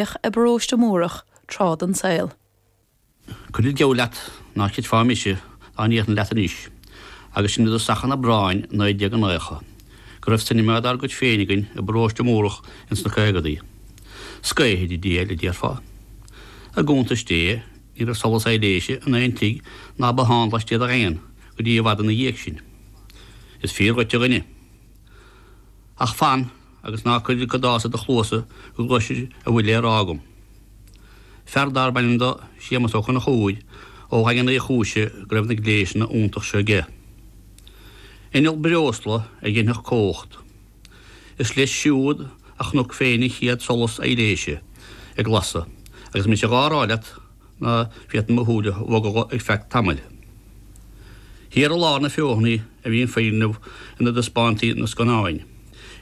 bheadh i bParóiste Múrach tráth den tsaol. Cuirfinn geall leat ná creidfeá mise dá ndéarfainn leat anois, agus sinn i dtosach an Aibreáin 1990, go raibh cinema dár gcuid féin againn i bParóiste Múrach ins na caogadaí. Scaothaire diail, a déarfá. I gcuntais Dé, ní raibh solas aibhléise in aon tigh ná bothán laistiar de Dhaingean go dtí i bhfad ina dhiaidh sin. Is fíor dhuit, a dhuine. Ach fan agus ná cuir an cadás i do chluasa go gcloisfir a bhfuil le rá agam. Fear darb ainm do Séamas Ó Conchúir ó Dhaingean Uí Chúise go raibh na gléasanna iontach seo aige. Inneall breosla a dhéanfadh cumhacht. Is leis siúd a chonac féin an chéad solas aibhléise ag lasadh agus mise dhá rá leat, ná féadfaí mo shúile a bhogadh ar feadh tamaill thiar i lár na Feothanaí a bhí an foirgneamh ina dtaispeántaí na scannáin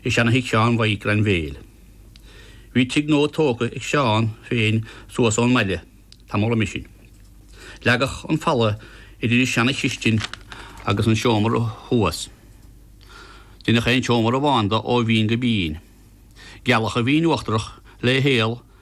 i seana-thigh Sheáin Mhaidhc Grainbhéil. Bhí tigh nua tógtha ag Seán féin suas ón mbaile tamall roimhe sin. Leagadh an falla idir an seana-chistin agus an seomra thuas. Deineadh aon tseomra amháin de ó bhinn go binn. Gealadh an bhinn uachtarach le haol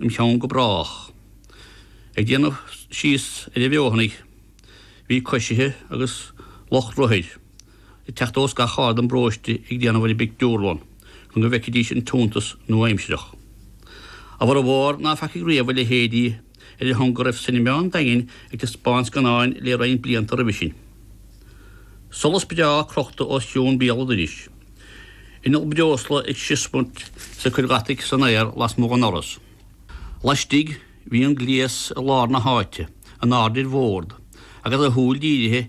im cheann go brách. Ag déanamh síos ar an bhFeothanaigh bhí coisithe agus lucht rothair ag teacht ós gach aird den bparóiste ag déanamh ar an bpictiúrlann chun go bhfeicfidís an t-iontas nua-aimsireach. A bhformhór ná feacaigh riamh a leithéidí ar a shon go raibh Cinema an Daingin ag taispeáint scannáin le roinnt blianta roimhe sin. Solas breá crochta os cionn béal an dorais. Inneall breosla ag siosmairt is ag cur deataigh san aer lasmuigh de dhoras. Laistigh, bhí an gléas i lár na háite, in airde ar bhord, agus a shúil dírithe